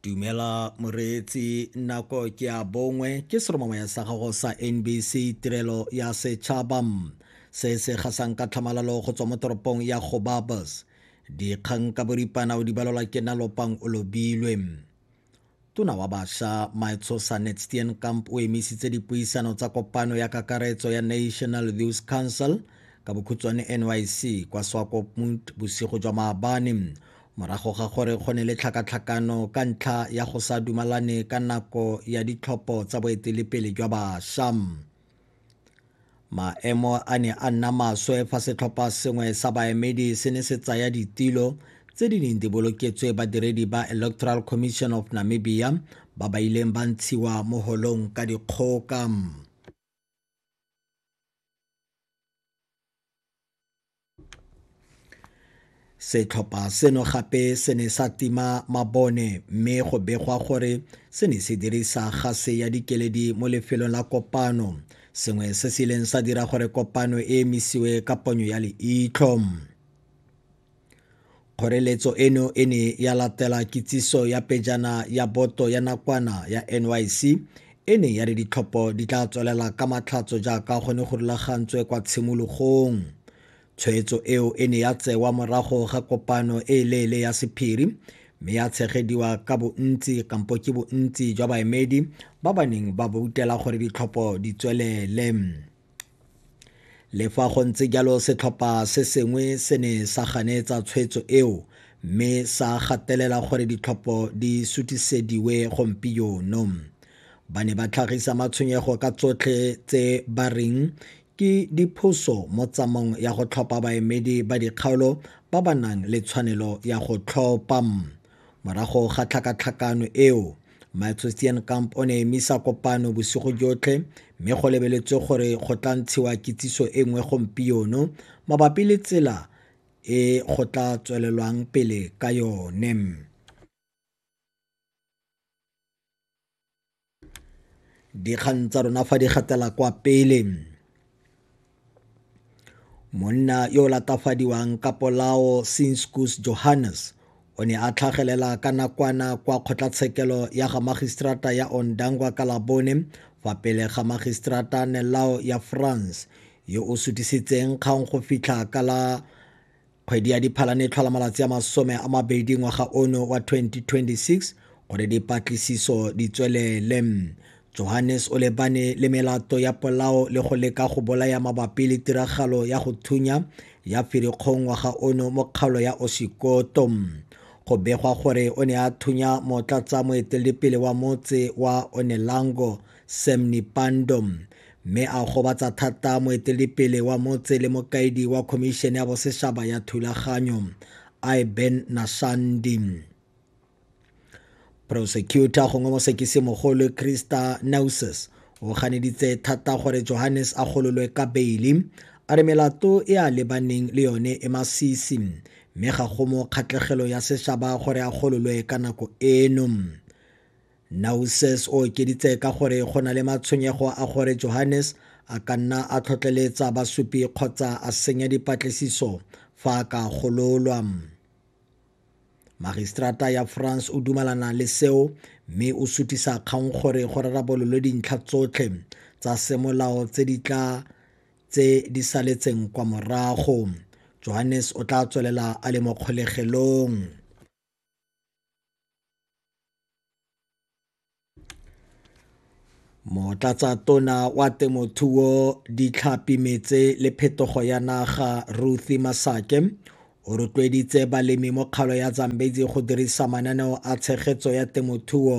dumela moreetsi nako ke a bongwe ke seromamaya sa gago sa nbc tirelo ya setšhaba se se gasang ka tlhamalalo go tswa mo toropong ya gobabas dikgang ka boripana o di balelwa ke na lopang o lobilwe Tona wa Basha Maetshosa Netsteenkamp o emisitse dipuisano tsa kopano ya kakaretso ya National Youth Council ka bokhutshwane NYC kwa Swakopmund bosigo jwa maabane morago ga gore go ne le tlhakatlhakano ka ntlha ya go sa dumalane ka nako ya ditlhopho tsa boetelepele jwa basha maemo a ne a nna maswe fa setlhopha sengwe sa baemedi se ne se tsaya ditilo tse di neng di boloketswe badiredi ba electoral commission of namibia ba ba ileng ba ntshiwa mo holong ka dikgoka Setlhopha seno gape se ne sa tima mabone mme go begwa gore se ne se dirisa gase ya dikeledi mo lefelong la kopano, sengwe se se ileng sa dira gore kopano e emisiwe ka ponyo ya leitlho. Kgoreletso eno e ne ya latela kitsiso ya pejana ya boto ya nakwana ya NYC e ne ya re ditlhopho di tla tswelela ka matlhatso jaaka go ne go rulagantswe kwa tshimologong. Tshwetso eo e ne ya tsewa morago ga kopano e e leele ya sephiri mme ya tshegediwa ka bontsi kampo ke bontsi jwa baemedi ba ba neng ba boutela gore ditlhopho di tswelele. Le fa go ntse jalo setlhopha se sengwe se ne sa ganetsa tshwetso eo mme sa gatelela gore ditlhopho di sutisediwe gompieno. Ba ne ba tlhagisa matshwenyego ka tsotlhe tse ba reng ke diphoso mo tsamong ya go tlhopha baemedi ba dikgaolo ba ba nang le tshwanelo ya go tlhopha. Morago ga tlhakatlhakano eo, Malthusian Kamp o ne a emisa kopano bosigo jotlhe mme go lebeletswe gore go tla ntshiwa kitsiso e nngwe gompieno mabapi le tsela e go tla tswelelwang pele ka yone. dikgang tsa rona fa di gatela kwa pele monna yo o latafadiwang ka polao sinskus johannes o ne a tlhagelela ka nakwana kwa kgotlatshekelo ya ga magistrata ya ondangwa ka labone fa pele ga magistrata nelao ya france yo o sutisitseng kgang go fitlha ka la Kgwedi ya Diphalane e tlhola malatsi a masome a mabedi ngwaga ono wa 2026 gore dipatlisiso di tswelele. Johannes o lebane le melato ya polao le go leka go bolaya mabapi le tiragalo ya go thunya ya Firikgong ngwaga ono mo kgaolo ya Osikoto. Go begwa gore o ne a thunya motlatsa moeteledipele wa motse wa Onelango Sam Nipando mme a gobatsa thata moetelepele wa motse le mokaedi wa Khomišene ya Bosešaba ya Thulaganyo, Iben Nashandi. Prosecutor gongwe mosekisimogolo Christa Nauses o ganeditse thata gore Johannes a gololwe ka beili a re melato e a lebaneng le yone e masisi mme ga go mo kgatlhegelo ya sešaba gore a gololwe ka nako eno. Nausses o okeditse ka gore go na le matshwenyego a gore Johannes a ka nna a tlhotlheletsa Basupi kgotsa a senya dipatlisiso fa a ka gololwa. Magistrata ya France o dumalana le seo mme o sutisa kgang gore go rarabololwe dintlha tsotlhe tsa semolao tse di tla tse di saletseng kwa morago johannes o tla tswelela a le mo kgolegelong Motlatsatona wa Temothuo, Ditlhapi Meetse le Phetogo ya Naga Ruthie Masake o rotloeditse balemi mo kgaolo ya Zambezi go dirisa mananeo a tshegetso ya temothuo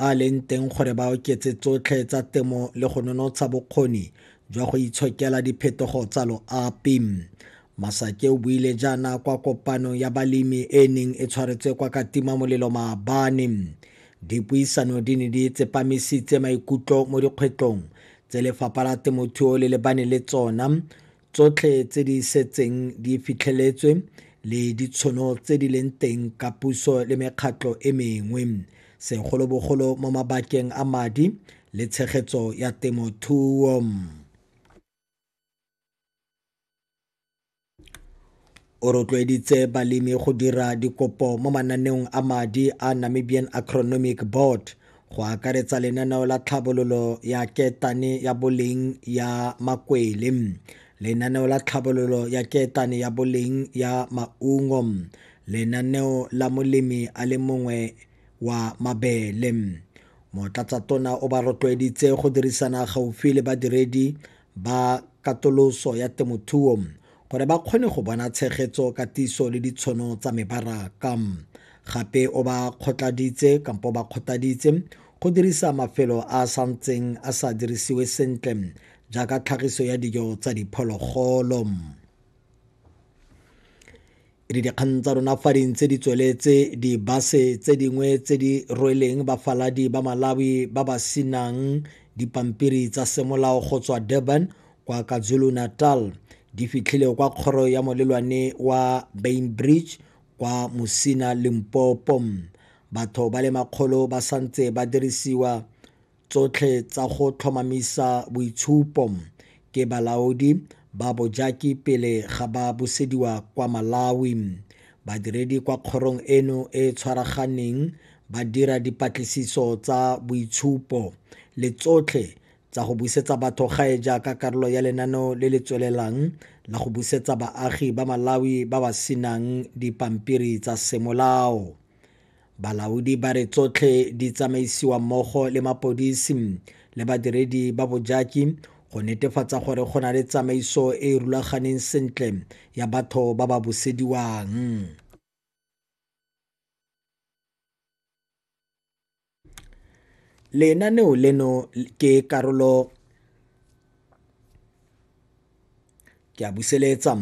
a leng teng gore ba oketse tsotlhe tsa temo le go nonotsha bokgoni jwa go itshokela diphetogo tsa loapi. Masake o buile jaana kwa kopanong ya balemi e e neng e tshwaretswe kwa Katima Molelo Maabane. Dipuisano di ne di tsepamisitse maikutlo mo dikgwetlong tse lefapha la temothuo le lebane le tsona tsotlhe tse di setseng di fitlheletswe le ditshono tse di leng teng ka puso le mekgatlho e mengwe segolobogolo mo mabakeng a madi le tshegetso ya temothuo O rotloeditse balemi go dira dikopo mo mananeong a madi a Namibian Agronomic Board go akaretsa lenaneo la tlhabololo ya ketane ya boleng ya makwele lenaneo la tlhabololo ya ketane ya boleng ya maungo lenaneo la molemi a le mongwe wa mabele motlatsatona o ba rotloeditse go dirisana gaufi le badiredi ba katoloso ya temothuo gore ba kgone go bona tshegetso, katiso le ditshono tsa mebaraka. Gape o ba kgotladitse kampo ba kgotaditse go dirisa mafelo a a santseng a sa dirisiwe sentle jaaka tlhagiso ya dijo tsa diphologolo. Re dikgang tsa rona fa di ntse di tsweletse dibase tse dingwe tse di rweleng bafaladi ba Malawi ba ba sinang dipampiri tsa semolao go tswa Durban kwa KwaZulu Natal di fitlhile kwa kgoro ya molelwane wa Bainbridge kwa Musina Limpopo batho ba le makgolo ba santse ba dirisiwa tsotlhe tsa go tlhomamisa boitshupo ke balaodi ba bojaki pele ga ba busediwa kwa Malawi. Badiredi kwa kgorong eno e e tshwaraganeng ba dira dipatlisiso tsa boitshupo le tsotlhe tsa go busetsa batho gae jaaka karolo ya lenaneo le le tswelelang la go busetsa baagi ba Malawi ba ba senang dipampiri tsa semolao. Balaodi ba re tsotlhe di tsamaisiwa mmogo le mapodisi le badiredi ba bojaki go netefatsa gore go na le tsamaiso e e rulaganeng sentle ya batho ba ba busediwang. Lenaneo leno ke karolo Ke a buseletsa.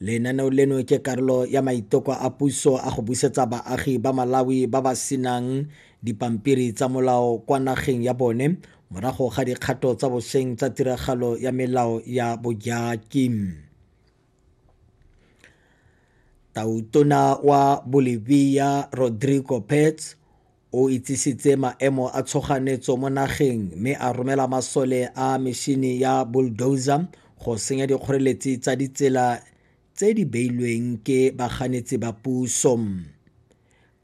Lenaneo leno ke karolo ya maiteko a puso a go busetsa baagi ba Malawi ba ba senang dipampiri tsa molao kwa nageng ya bone morago ga dikgato tsa bosheng tsa tiragalo ya melao ya bojaki. Tautona wa Bolivia Rodrigo Pets O itsisitse maemo a tshoganetso mo nageng mme a romela masole a mešini ya bulldozer go senya dikgoreletsi tsa ditsela tse di beilweng ke baganetsi ba puso.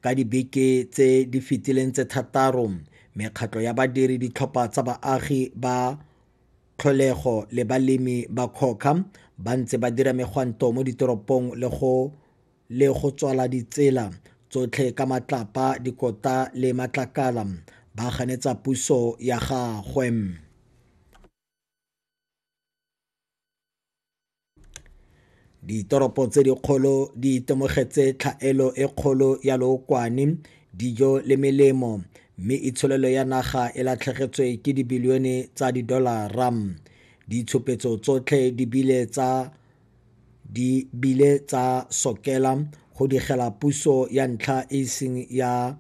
Ka dibeke tse di fetileng tse thataro, mekgatlho ya badiri, ditlhopha tsa baagi ba tlholego le balemi ba COCA ba ntse ba dira megwanto mo ditoropong le go le go tswala ditsela tsotlhe ka matlapa, dikota le matlakala, ba ganetsa puso ya gagwe. Ditoropo tse dikgolo di itemogetse tlhaelo e kgolo ya lookwane, dijo le melemo, mme itsholelo ya naga e latlhegetswe ke dibilione tsa didolara. Ditshupetso tsotlhe di bile tsa di bile tsa sokela go digela puso ya ntlha e e seng ya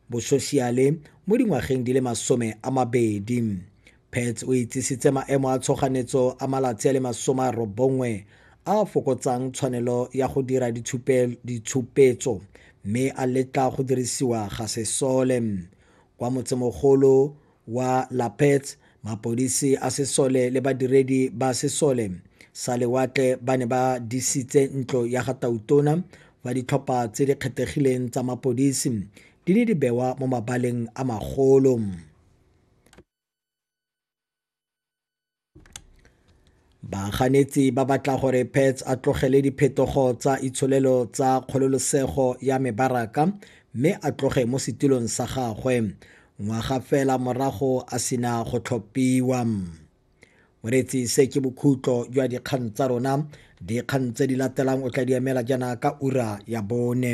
bososiale mo dingwageng di le masome a mabedi. Pets o itsisitse maemo a tshoganetso a malatsi a le masome a robongwe a fokotsang tshwanelo ya go dira ditshupetso mme a letla go dirisiwa ga sesole kwa motsemogolo wa Lapets, mapodisi a sesole le badiredi ba sesole sa lewatle ba ne ba disitse ntlo ya ga Tautona fa ditlhopha tse di kgethegileng tsa mapodisi di ne di bewa mo mabaleng a magolo. Baganetsi ba batla gore Pets a tlogele diphetogo tsa itsholelo tsa kgololesego ya mebaraka mme a tloge mo setulong sa gagwe ngwaga fela morago a sena go tlhophiwa. Moretsi se ke bokhutlo jwa dikgang tsa rona. Dikgang tse di latelang o tla di emela jaana ka ura ya bone.